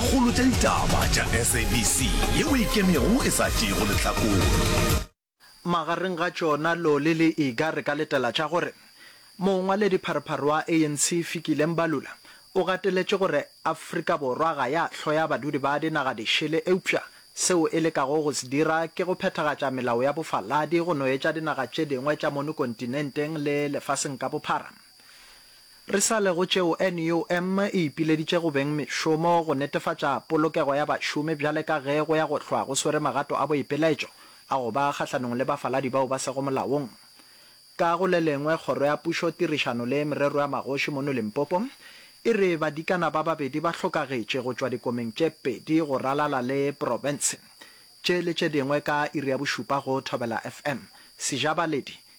Kgolo tša ditaba tša SABC yeo e ikemego e sa tšeego lehlakore. Magareng ga tšona Loli le Iga re ka letela tša gore mongwaledi pharephare wa ANC Fikile Mbalula o gateletše gore Afrika Borwa ga ya hloya badudi ba dinaga dišele eupša seo e lekago go se dira ke go phethagatša melao ya bofaladi go no etša dinaga tše dingwe tša mono kontinenteng le lefaseng ka bophara Re sa le go tšeo, NUM e ipileditše go beng mešomo go netefatša polokego ya bašomi bjale ka ge go ya go hlwa go swere magato a boipeletšo a go ba kgahlanong le bafaladi bao ba sego molaong. Ka go le lengwe, Kgoro ya Pušo, Tirišano le Merero ya Magoši mono Limpopo e re badikana ba babedi ba hlokagetše go tšwa dikomeng tše pedi go ralala le profense tše le tše dingwe ka iri ya bošupa go Thobela FM. Sejabaledi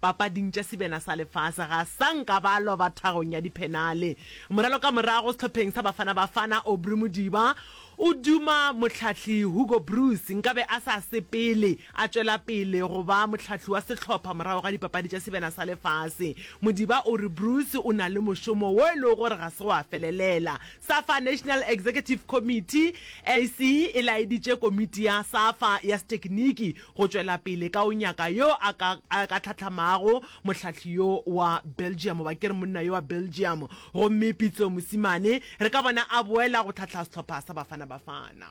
Papading tša Sebena sa Lefase ga sa nka ba lwa ba thagong ya diphenale. Moralo ka morago sehlopheng sa Bafana Bafana, Aubrey Modiba o duma mohlahli Hugo Broos nkabe a sa sepele a tšwela pele go ba mohlahli wa sehlopha morago ga dipapadi tša Sebena sa Lefase. Modiba o re Broos o na le mošomo wo e lego gore ga se wa felelela. Safa National Executive Committee, NEC, e laeditše komiti ya Safa ya setekiniki go tšwela pele ka go nyaka yo a ka a ka tlhatlhamago mohlahli yo wa Belgium, goba ke re monna yo wa Belgium. Gomme Pitso mosimane, re ka bona a boela go tlhahla sehlopha sa Bafana Bafana.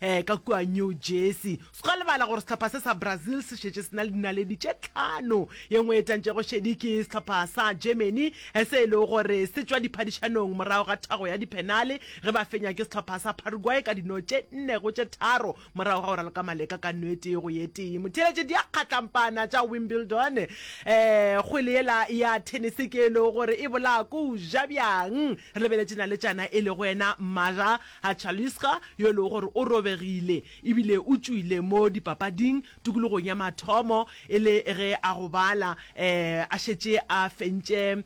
ka kua New Jersey. Se ka lebala gore sehlopha se sa Brazil se šetše se na le dinaledi tše tlhano. Ye nngwe e tantšego šedi ke sehlopha sa Germany se e lego gore se tšwa diphadišanong morago ga thago ya diphenale ge ba fenywa ke sehlopha sa Paraguay ka dino tše nne go tše tharo morago ga go raloka maleka ka no e tee go ye tee. Motheeletše diakgatlampana tša Wimbledon, kgwele yela ya thenese ke e lego gore e bolaa ko o ja bjang? Re lebeletše naletšana e lego yena Maja A Chalisca, yo e lego gore o robegile e bile o tšwile mo dipapading tokologong ya mathomo e le ge a gobala a šetše a fentše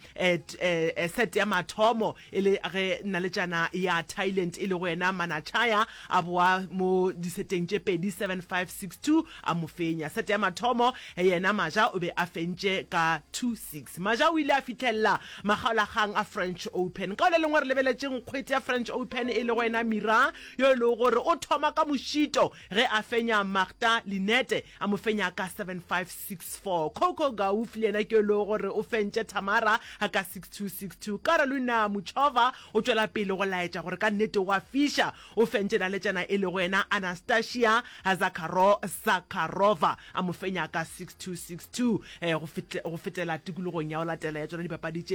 set ya mathomo e le ge naletšana ya Thailand e lego yena Manachaya a boa mo diseteng tše pedi, seven, five, six, two, a mo fenya. Set ya mathomo yena Maja o be a fentše ka two, six. Maja o ile a fihlelela Makgaolakgang a French Open. Ka o le lengwe re lebeletšeng kgwete ya French Open e lego ena Mira yo e lego gore o thoma ka mošito ge a fenya Marta Linette a mo fenya ka seven five, six four. Coco Gauff le yena ke yo e lego gore o fentše Tamara ka six two, six two. Karolina Muchova o tšwela pele go laetša gore ka nnete o a fiša, o fentše naletšana e lego ena Anastasia Zakharov Zakharova a mo fenya ka six two, six two go fetela tikologong ya go latela ya tšona dipapadi tše.